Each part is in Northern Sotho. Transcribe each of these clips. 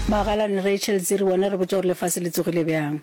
Magalane Rachel Dziri wena re botša gore lefase le tsogile bjang.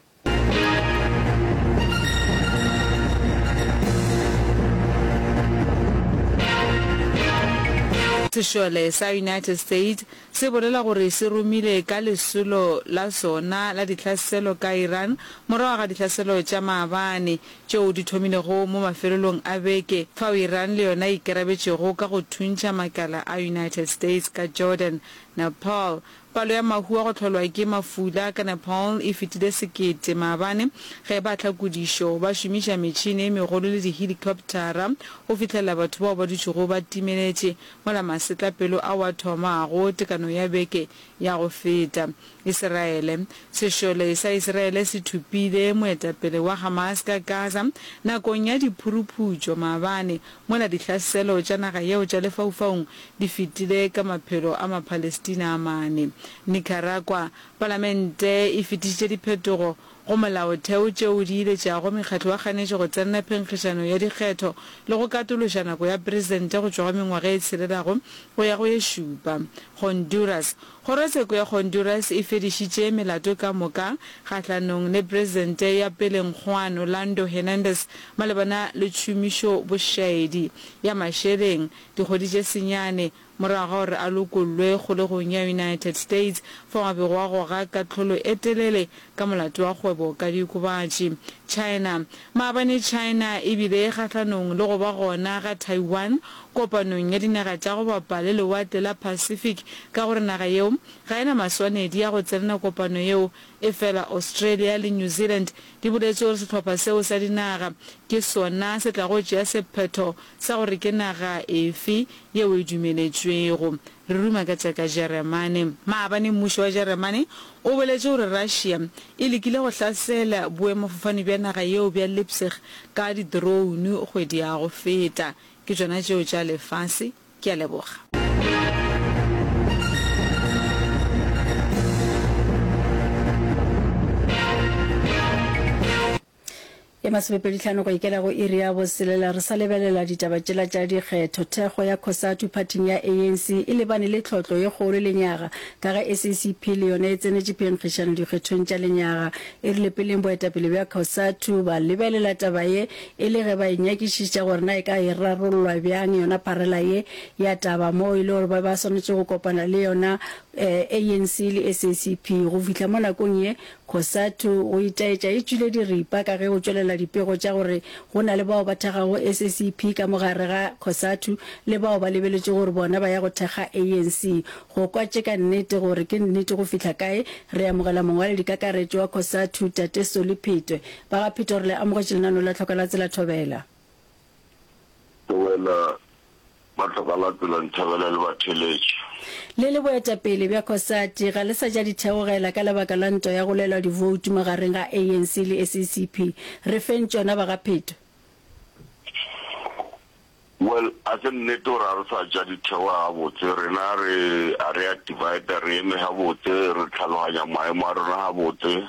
Sešole sa United States se bolela gore se romile ka lesolo la sona la dihlaselo ka Iran morago ga dihlaselo tša maabane tšeo di thomilego mo mafelelong a beke fao Iran le yona e ikarabetšego ka go thuntšha makala a United States ka Jordan, Nepal. Palo ya mahu a go hlolwa ke mafula ka Nepal e fetile sekete maabane ge baahlakodišo ba šomiša metšhene e megolo le dihelikoptara go fihlelela batho bao ba dutšego ba timeletše mola masetlapelo ao a thomago tekano ya beke ya go feta. Isiraele. Sešole sa Isiraele se thopile moetapele wa Hamas ka Gaza nakong ya diphuruputšo maabane mola dihlaselo tša naga yeo tša lefaufaung di fetile ka maphelo a Mapalestina a mane. Nicaragua, Palamente e fetišitše diphetogo go molaotheo tšeo di iletšago mekgatlo ya kganetšo go tsenela phenkgišano ya dikgetho le go katološa nako ya presidente go tšwa go mengwaga e tshelelago go ya go ye šupa. Honduras, Kgorotsheko ya Honduras e fedišitše melato ka moka kgahlanong le Presente ya peleng Juan Orlando Hernandez malebana le tšhomišo bošaedi ya mašeleng dikgwedi tše senyane morago ga gore a lokollwe kgolegong ya United States fao a bego a goga kahlolo e telele ka molato wa kgwebo ka diokobatši. China Maabane China e bile e kgahlanong le go ba gona ga Taiwan Kopanong ya Dinaga tša go Bapa le Lewatle la Pacific ka gore naga yeo ga e na maswanedi a go tsenela kopano yeo efela Australia le New Zealand di boletše gore sehlopha seo sa dinaga ke sona se tlago tšea sephetho sa gore ke naga efe yeo e dumeletšwego Re ruma ka tša ka Jeremane. Maabane mmušo wa Jeremane o boletše gore Russia e lekile go hlasela boemafofane bja naga yeo bja Leipzig ka didroune kgwedi ya go feta. Ke tšona tšeo tša lefase. Ke a leboga. Ye masomepeditlhano go ikela go iri ya boselela re sa lebelela ditaba tšela tša dikgetho, thekgo ya Cosatu phathing ya ANC e lebane le tlhotlo ye kgolo lenyaga ka ge SACP le yona e tsenetše phenkgišano dikgethong tša lenyaga. E rile peleng boetapele bja Cosatu ba lebelela taba ye e le ge ba e nyakišiša gore na e ka e rarollwa bjang yona pharela ye ya taba moo e le gore ba ba swanetše go kopana le yona ANC le SACP go fihla mo nakong ye Cosatu, go itaetša e tšwile diripa ka ge o tšwelela dipego tša gore go na le bao ba thekgago SACP ka mo gare ga Cosatu le bao ba lebeletšego gore bona ba ya go thekga ANC. Go kwa tše ka nnete gore ke nnete go fihla kae, re amogela mongwaledikakaretšo wa Cosatu, Tate Solly Phetwe. Ba ga Phetwe re le amogetše lenanong la Tlhoka la Tsela Thobela. Thobela, Ba tla ka la pela Nthabela le ba theletše. Le le boetapele bja Cosatu ga le sa ja di theogela ka lebaka la ntwa ya go lwelwa divoutu magareng ga ANC le SACP. Re feng tšona ba ga Pheto. Well, a se nnete gore a re sa ja di theoga gabotse. Rena re a re a divider, re eme gabotse, re tlhalohanya maemo a rona gabotse.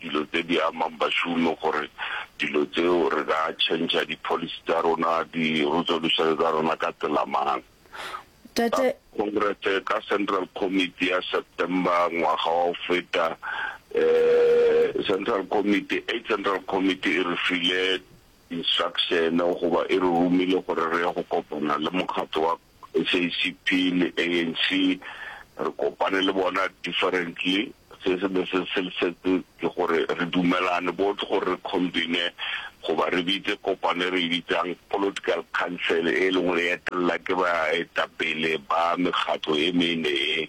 dilo tse di amang bašomi gore dilo tseo re ka change-a di policy tsa rona, di resolution tsa rona ka tsela mang. Tate. Congress ka Central Committee ya September ngwaga wa go feta, eh, Central Committee, Eight Central Committee e re file Instruction goba e re romile gore re ye go kopana le mokgatlo wa SACP le ANC, re kopane le bona differently. Se se be se se setse ke gore re dumelane both gore re combine goba re bitse kopano e re e bitsang Political Council e leng gore e etelela ke baetapele ba mekgatlo e mene e.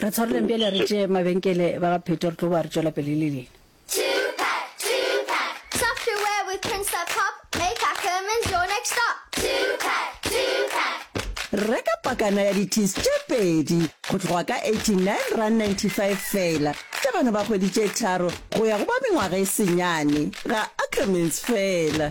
Re tshwareleng bjale re tšee mabenkele ba ga Pheto re tlo boa re tšwela pele le lena. Reka pakana ya di-teas tše pedi go tloga ka R89.95 feela tša bana ba kgwedi tše tharo go ya go ba mengwaga e senyane ga Ackermans feela.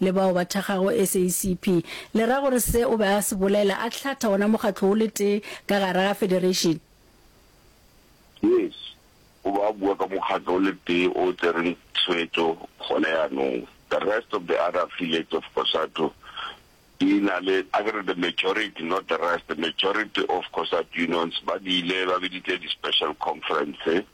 le bao ba thekgago SACP, le ra gore se o be a se bolela, a hlatha wona mokgatlo wo le tee ka gare ga federation? Yes, o be a bua ka mokgatlo o le tee o tsereng tshwetso gona yanong. The rest of the other affiliates of Cosatu di na le, a ke re the majority, not the rest, the majority of Cosatu unions ba di ile ba biditse di special conference.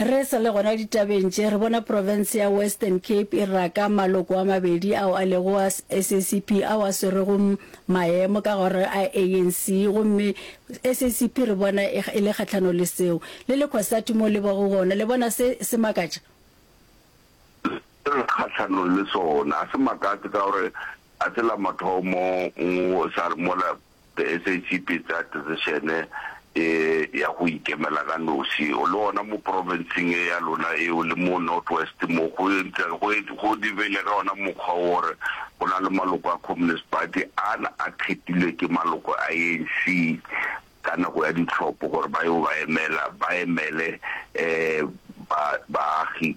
Re sa le gona ditabeng tše, re bona profense ya Western Cape e raka maloko a mabedi ao a lego a SACP ao a swerego maemo ka gare a ANC gomme SACP re bona e le kgahlano le seo. Le le Cosatu moo le bego gona, le bona se se makatša? Se re kgahlano le sona. A se makatše ka gore ga se la mathomo go sa re mola The SACP e tsaya decision-e e ya go ikemela ka nosi. O le gona mo province-ing e ya lona eo le mo North West mo go ntse go go dibele ka ona mokgwa o gore go na le maloko a Communist Party a a kgethilwe ke maloko a ANC ka nako ya ditlhopho gore ba yo ba emela ba emele ba baagi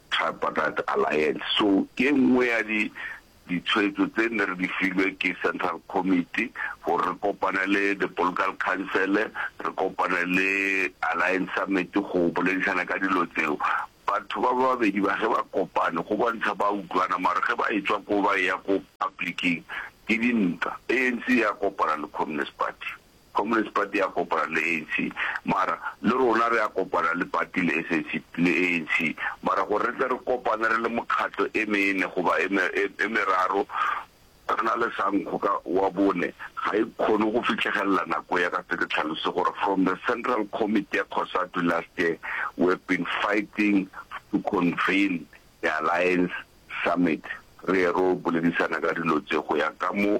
Tripartite Alliance. So ke e nngwe ya di ditshwetso tse ne re di filwe ke Central Committee gore re kopane le the Political Council, re kopane le Alliance Summit go boledišana ka dilo tseo. Batho ba babedi ba ge ba kopane go bontšha ba utlwana mara ge ba e tswa ko ba eya ko public-ing ke dintwa. ANC ya kopana le Communist Party. Communist Party ya kopana le ANC mara le rona re a kopana le party le SAC le ANC mara gore re tle re kopane re le mokgatlo e mene goba e me e meraro re na le sankgo ka wa bone ga e kgone go fitlhegelela nako ya ka se ke tlhalose gore from the central committee ya Cosatu last year we have been fighting to convene the alliance summit re ye ro boledisana ka dilo tse go ya ka mo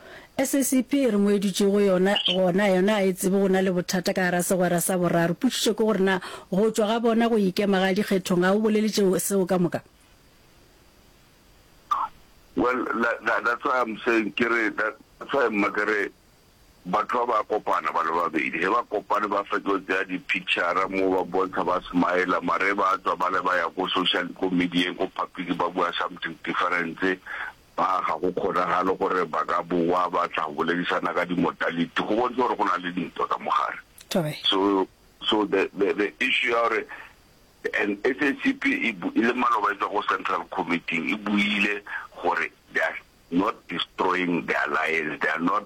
SACP e re mo e dutše go yona gona yona a e tsebe go na le bothata ka gara segwera sa boraro. Putšišo ke gore na go tšwa ga bona go ikema ga dikgethong ga go bolele tšeo seo ka moka? Well, that, that, that's why I'm saying ke re that, that's why mma ke re batho ba ba kopana ba le babedi ge ba kopane ba fetlo tsaya di-picture mo ba bontsha ba smile mare ba tswa ba le ba ya ko social ko medieng ko public ba bua something difference Ba ga go kgonagale gore ba ka bowa ba tla boledisana ka di-modality, go bontšha gore go na le dintwa ka mogare. Tobe. So, so the, the, the issue ya gore and SACP e, e le maloba e tswa go Central Committee e buile gore they are not destroying the alliance, they are not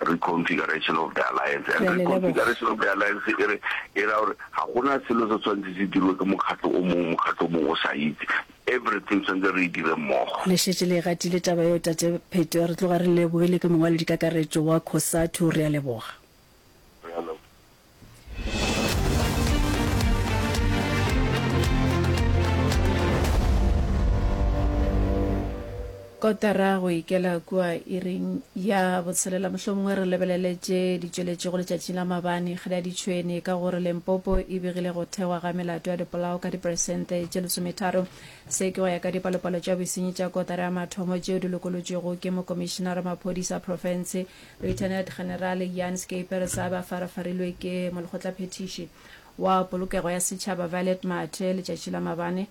Reconfiguration of the Alliance. And Reconfiguration of the Alliance e re e ra gore ga gona selo se tshwanetse se dirwe ke mokgatlo o mongwe mokgatlo o mongwe o sa itse everything tshwanetse re e dire mmogo. Le šetše le e gatile taba yeo Tate Pheto. Re tloga re le lebogile ke mongwaledikakaretšo wa Cosatu. Re a leboga. kotara go ikela kua iring ya botshelela mohlomongwe re lebelele tše di tšweletšego letšatšing la mabane kgele ya ditšhwene ka gore lempopo e begile go thegwa ga melato ya dipolao ka diperesente tše lesometharo se ke go ya ka dipalopalo tša bosenyi tša kotara ya mathomo tšeo di lokolotšwego ke mokomišenara maphodisa profense Lieutenant General Jan Schepers a be a farafarilwe ke Molekgotlaphethiši wa Polokego ya Setšhaba Violet Mathe letšatši la mabane.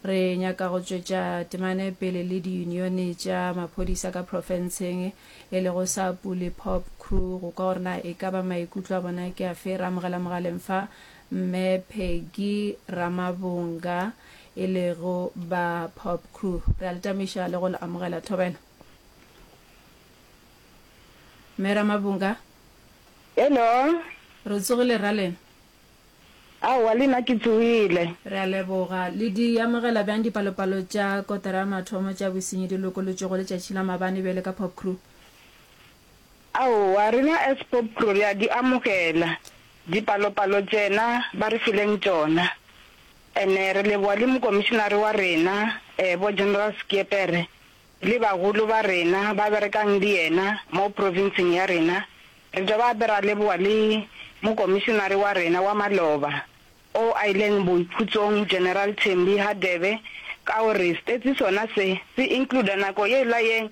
Re nyaka go tšwetša temane pele le diyunione tša maphodisa ka profenseng e lego sa Puli Pop Crew go kwa gore na e ka ba maikutlo a bona ke afe, re amogela mogaleng fa Mme Peggy Ramabonga e lego ba Pop Crew. Re a le tamiša le go le amogela. Thobela. Mme Ramabunga? Hello. Re tsogile rra lena? Aowa le nna ke tsogile. Re a leboga. Le di amogela bjang dipalopalo tša kotara ya mathomo tša bosenyi di lokolotšwego letšatši la mabane bjale ka Popcru? Aowa, rena as Popcru re a di amogela dipalopalo tšena ba re fileng tšona. And re leboga le mokomišenare wa rena bo General Schiepere. Le bagolo ba rena ba berekang le yena mo provinseng ya rena, re tšwa gape ra leboga le Mokomišenare wa rena wa maloba o a ileng boikhutsong General Thembi Hadebe ka go re stetsi sona se se includa nako yela ye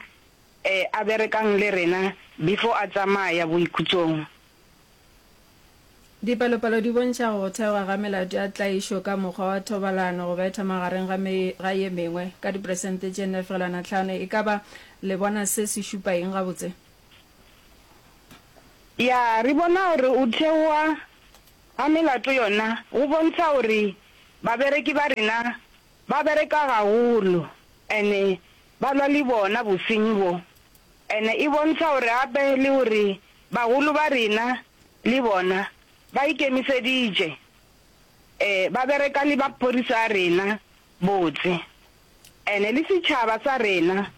a berekang le rena before a tsamaya boikhutsong. Dipalopalo di bontšha go thewa ga melato ya tlaišo ka mokgwa wa thobalano go betha magareng ga me ga ye mengwe ka diperesente tše nne fegelwana tlhano. E ka ba le bona se se šupa eng gabotse? Ya, re bona gore go thewa ga melato yona go bontšha gore babereki ba rena ba bereka gagolo and ba lwa le bona bosenyi bo. Ene e bontšha gore gape le gore bagolo ba rena le bona ba ikemiseditše, ee, ba bereka le maphodisa a rena botse. Ene le setšhaba sa rena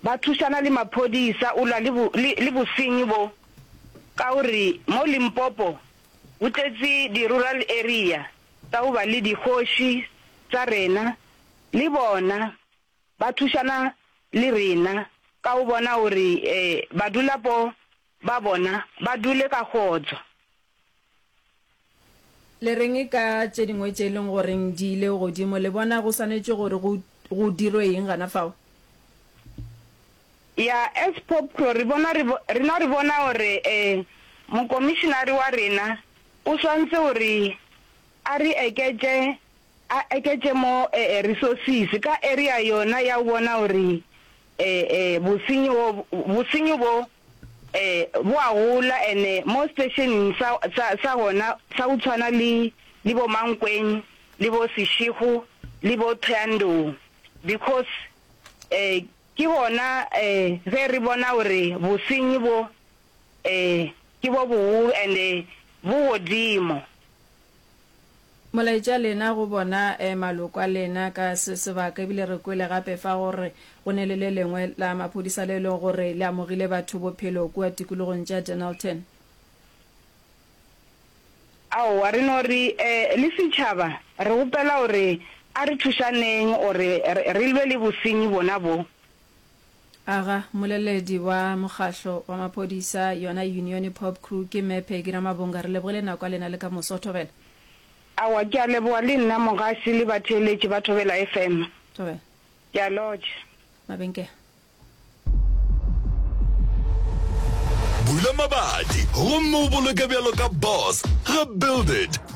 ba thušana le maphodisa o lwa le, le, le bosenyi bo, ka gore mo Limpopo go tletše di-rural area tsa go ba le dikgoši tsa rena le bona. ba thušana le rena ka go bona gore badulapo ba bona ba dule ka kgotso. Le reng ka tše dingwe tše e leng gore di ile godimo? Le bona go swanetše gore go dirwe eng gana fao? Ya, as POPCO, rena re bona gore mokomišinare wa rena o swantse gore a re eketše A eketše mo e, e, resources ka area yona ya go bona gore e, e, bosenyi bo, bosenyi bo e, bo a gola and mo stationeng sa, sa, sa gona sa go tshwana le, le bo Mankweng le bo Seshego le bo Thoyandou because e, ke gona e, ge re bona gore bosenyi bo e, ke bo boholo and bo godimo. Molaetša lena go bona e maloko a lena ka se sebaka ebile re kwele gape fa go re go ne le le lengwe la maphodisa le e lego gore le amogile batho bophelo kua tikologong tša Dennilton. Aowa, re no re eh, le setšhaba re gopela gore a re thušaneng gore re lwe le bosenyi bona bo, Aga, Moleledi wa mokgahlo wa maphodisa yona unione pop crew ke Me Peggy Ramabonga re lebogile nako ya lena le ka moso Thobela. Aowa ke a leboga le nna mogasi le batheeletši ba Thobela FM. Thobela. Ke a lotša. Mabenkele. Bula mabati gomme o boloke bjalo ka boss ga Build it.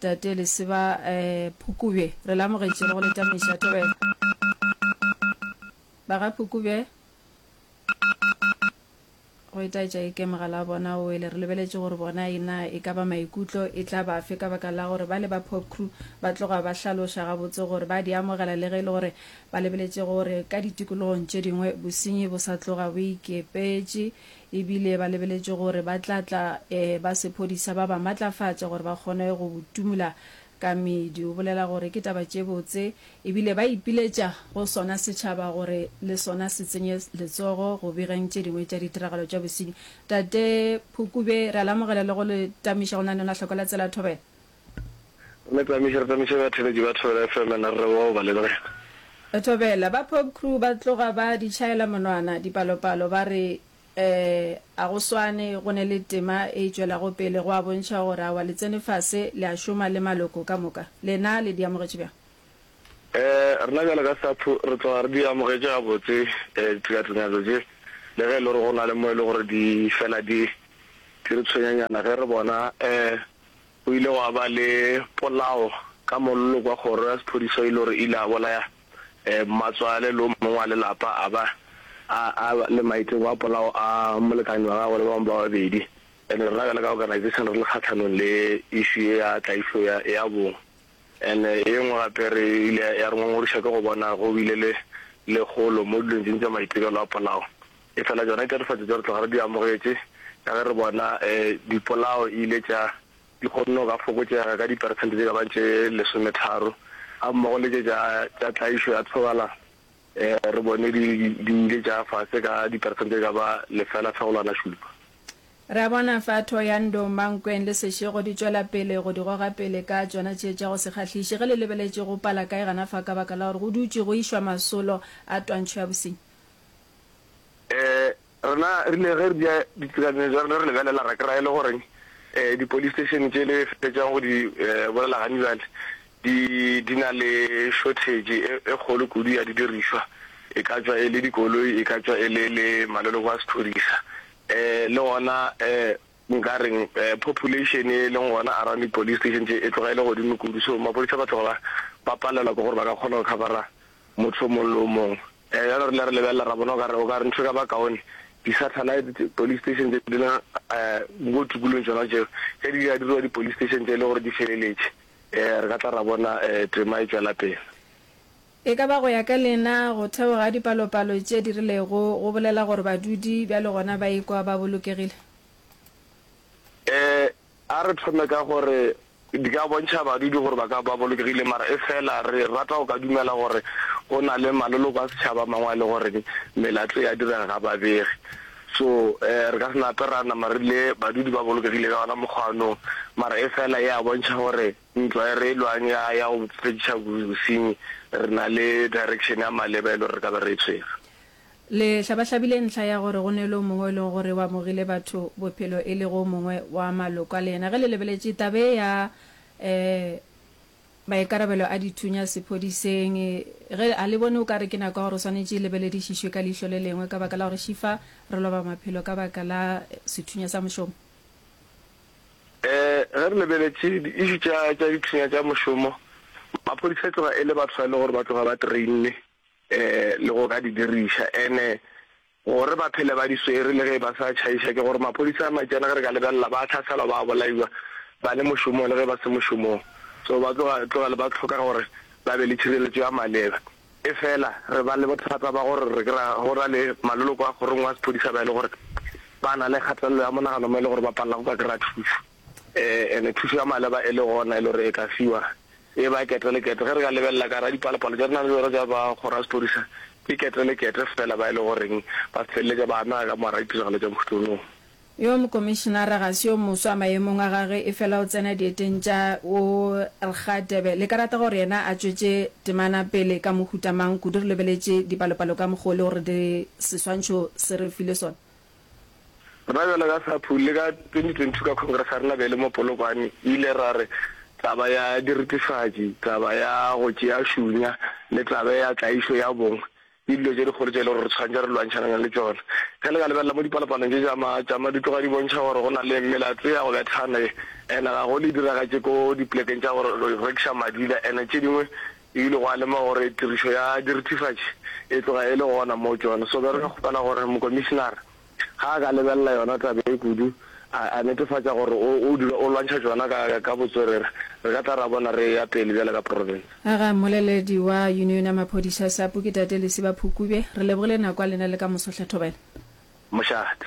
Tate Lesiba Phukubje, re le amogetše le go le tameiša thobela. Ba ga Phukubje, go etaetša eke mogala wa bona o wele. Re lebeletše gore bona e na e ka ba maikutlo e tla bafe ka baka la gore bale ba Pop Crew ba tloga ba hlaloša gabotse gore ba di amogela le ge e le gore ba lebeletše gore ka ditikologong tše dingwe bosenyi bo sa tloga bo ikepetše E bile ba lebeletše gore ba tla tla e ba sephodisa ba ba matlafatše gore ba kgone go timola ka meedi. O bolela gore ke taba tše botse e bile ba ipiletša go sona setšhaba gore le sona se tsenye letsogo go begeng tše dingwe tša ditiragalo tša bosenyi. Tate Phukube, re a le amogela le go le tamiša go na le lona hloko la Tsela Thobela. Re tsamaiše, re tsamaiše batheeletši ba Thobela FM and re bowa go ba lebogela. Thobela, ba Pop Crew ba tloga ba di tšhaela monwana dipalopalo ba re eh, a go swane, go ne le tema e e tšwelago pele, go a bontšha gore awa le tsene fase le a šoma le maloko ka moka. Lena le di amogetše bjang? Eh, rena bjalo ka SAPHU re tloga re di amogetše gabotse eh, ditekatekanyo tše, le ge e le gore go na le mo e le gore di fela di di re tshwenyanyana ge re bona eh, go ile gwa ba le polao ka mollo kwa kgoro ya sephodiso e le gore e ile ya bolaya mmatswale le o mongwe wa lelapa a ba a le maeteng wa polao a molekane wa gagwe le ba bangwe ba babedi. And rena bjale ka organization re le kgatlhanong le issue e ya tlaišo ya bong. And e nngwe gape re ile ya re ngongoriša ke go bona go bile le lekgolo mo dilong tse ding tša maitirelo a polao Efela tšona ditatofatšo tšeo re tloga re di amogetše ka ge re bona dipolao e ile tša di kgonne go ka fokotšega ka diperesente tše ka bago tše lesometharo, gammogo le tše tša tša tlaišo ya thobalano re bone di di ile tša ya fase ka diperesente tše ka ba lefela-fegolwana-šupa. Re a bona fa Thohoyandou, Mankweng le Seshego di tšwela pele go di goga pele ka tšona tše tša go se kgahliše ge le lebeletše go pala kae gana fa ka baka la gore go dutše go išwa masolo a twantšho ya bosenyi. Rena rile ge re dira ditekanyo tša rena re lebelela ra kry-a e le gore di police station tše le fetšang go di bolela gane bjale di di na le shortage e kgolo kudu ya di dirišwa e ka tšwa e le dikoloi e ka tšwa e le le maloloko a sephorisa le gona nka reng population e leng gona around di police station tše e tloga e le godimo kudu so maphodisa ba tloga ba palelwa ke gore ba ka kgona go cover-a motho o mongwe le o mongwe. Ee, bjale re rile re lebelela ra bona o ka re, o ka re ntho e ka ba kaone, di-satellite tše, police station tše di leng mo tikologong tšona tšeo, ge di ka diriwa di-police station tše e le gore di feleletše, re ka tla ra bona tema e tšwela pele. E ka ba go ya ka lena, go thewa ga dipalopalo tše di rilego go bolela gore badudi bjale gona ba ikwa ba bolokegile? Ee, A re thome ka gore di ka bontšha badudi gore ba ka ba bolokegile mara e fela re rata go ka dumela gore go na le maloloko a setšhaba a mangwe a e le gore melato e a direga ga babege so um re ka se nape ra nama re rile badudi ba bolokegile ka ona mokgwa anong mara e fela e a bontšha gore ntlo e re e lwang ya ya go fediša bosenyi re na le direction ya maleba e le gore re ka be re e tshwere. Le hlabahlabile ntlha ya gore go ne le o mongwe o e lego gore o amogile batho bophelo e lego o mongwe wa maloko a lena. Ge le lebeletše taba ye ya maikarabelo a dithunya sephodiseng, ge ga le bone o ka re ke nako ya gore o swanetše e lebeledišišwe ka leihlo le lengwe ka baka la gore šifa re loba maphelo ka baka la sethunya sa mošomo? Ee, ge re lebeletše di-issue tša dithunya tša mošomo, maphodisa e tloga e le batho ba e lego gore ba tloga ba trainne. le go ka di diriša ene gore ba phele ba di swere le ge e ba sa tšhaiša ke gore maphodisa a matšana ge re ka lebelela ba tlhaselwa ba bolaiwa ba le mošomong le ge ba se mošomong so ba tloga tlogele ba tlhoka gore ba be le tšhireletšo ya maleba e fela re ba le bothata ba gore re kry go na le maloloko a kgorong wa sephodisa ba e le gore ba na le kgatelelo ya monagano mo e le gore ba palela go ka kry-a thuso. Ene thušo ya maleba e le gona e le gore e ka fiwa e ba kete le kete. Ge re ka lebelela ka ra dipalopalo tša re nang le tsona tša ba kgoro ya sepodisa, ke kete le kete fela ba e le goreng ba feleletša ba amega ka morago ditiragalo tša Moštoonong. Yo mokomišenara ga se yo moswa maemong a gage efela o tsena dieteng tša wo rga Debe. Le ka rata gore yena a tšwetše temana pele ka mohuta mang kudu re lebeletše dipalopalo ka mokgo e le gore di seswantšho se re file sona? Rena bjalo ka SAPU le ka 2022 ka Congress ga re na bele mo Polokwane e ile ra re taba ya diritifatši, taba ya go tšea šunya le tabe ya tlaišo ya bong ke dilo tše dikgolo tše e le gore re tshwanetse re lwantšhanane le tšona. Ge le ka lebelela mo dipalopalong tše tša matšama di tloga di bontšha gore go na le melato ya go bethana ye ene ga go le diragatše ko diplekeng tša go rekiša madila ene tše dingwe E ile gwa lemoga gore tirišo ya dirithifatši e tloga e le gona moo tšona. So be re ka kgopela gore mokomišinara, ge a ka lebelela yona taba ye kudu, a, a netefatša gore o, o dula o lwantšha tšona ka, ka botswerere, re ka tla ra bona re eya pele bjale ka profense. A ga mmoleledi wa Union ya Maphodisa, Sapu, ke Tate Lesiba Phukube. Re lebogile nako ya lena le ka moso, Tlhathobela. Mošate.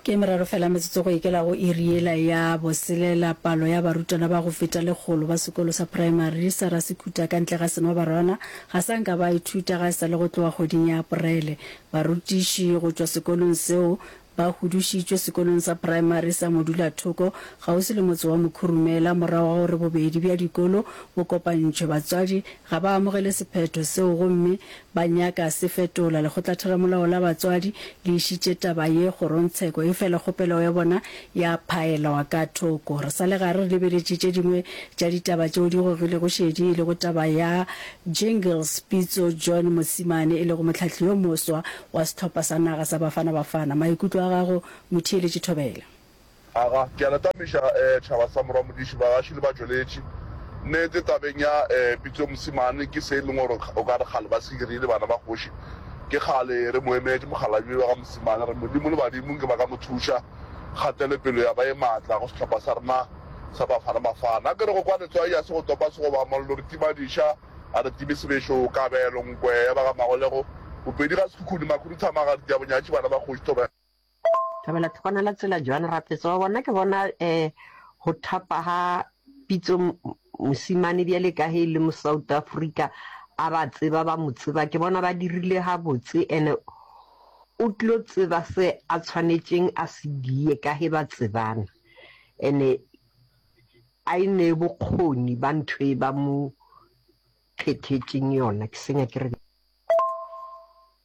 Ke meraro fela metsotso go ikela go iri yela ya boselela, palo ya barutwana ba go feta lekgolo ba sekolo sa praemari sa Rasekhuta ka ntle ga Senobarwana ga sa nka ba ithuta ga e sa le go tloga kgweding ya Aprele. Barutiši go tšwa sekolong seo ba hudušitšwe sekolong sa praemari sa Modulathoko kgauswi le motse wa Mokhurumela morago ga gore bobedi bja dikolo bo kopantšhwe. Batswadi ga ba amogele sephetho seo gomme Ba nyaka se fetola. Lekgotlatheramolao la batswadi le išitše taba ye kgorongtsheko efela kgopelo ya bona ya phaelwa ka thoko. Re sa le gare re lebeletše tše dingwe tša ditaba tšeo di gogilego šedi e lego taba ya Jingles Pitso John Mosimane e lego mohlahli yo moswa wa sehlopha sa naga sa Bafana Bafana. Maikutlo a gago Motheeletši Thobela. Aga, ke a le tamiša tšhaba sa morwa modiši, bagaši le batšweletši. Nnete, tabeng ya pitso mosimane, ke se e leng gore o ka re kgale ba se dirile bana ba kgoši. Ke kgale re mo emetše mokgalabje wa ga mosimane, re Modimo le badimo nke ba ka mo thuša, kgatelopelo ya ba e matla go sehlopha sa rena sa Bafana Bafana. Ke re go kwa letswai a se go topa segoba, mollo re tima diša, a re time sebešo, kabelo, nkwe ya ba ga Magolego, Bopedi ga Sekhukhune, Makhuduthamaga, Diabonyatši, bana ba kgoši, thoba ya. Ka bela thoko na la tsela Joan Rafetsa wa bona ke bona eh go thapa ha pitso mosimane bjale ka he le mo South Africa a ba tseba ba mo tseba ke bona ba dirile ha botse ene o tlo tseba se a tshwanetseng a se die ka he ba tsebana ene a e ne bokgoni ba ntho e ba mo kgethetšeng yona ke senya ke re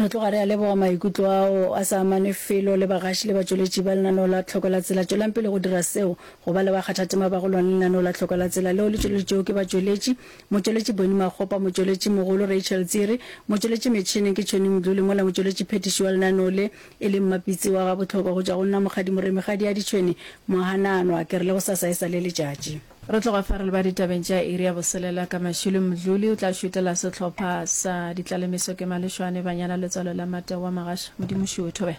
Re tloga re a leboga maikutlo ao a sa amane felo le bagaši le batšweletši ba lenaneo la Tlhoko la Tsela. Tšwelang pele go dira seo. Go ba le bakgathatema ba go lwana le lenaneo la Tlhoko la Tsela leo le tšweleditšwego ke batšweletši, Motšweletši Bonnie Makgopa, Motšweletši Mogolo Rachel Tsiri, Motšweletši Metšhineng ke Tšhoni Mdluli mola Motšweletši Phethiši wa lenaneo le e leng Mapitsi wa ga Bohlokwa go tšwa go nna Mokgadi Moremi Kgadiadi Tšhweni Mohananwa. Ke re le go sasa e sa le letšatši. Re tloga fa re leba ditabeng tša iri ya boselela ka mašilo. Mdluli o tla šutela sehlopha sa Ditlalemiso ke Malešwane, Banyana, Letswalo la Mate wa Magaša. Modimo šuwe thobela.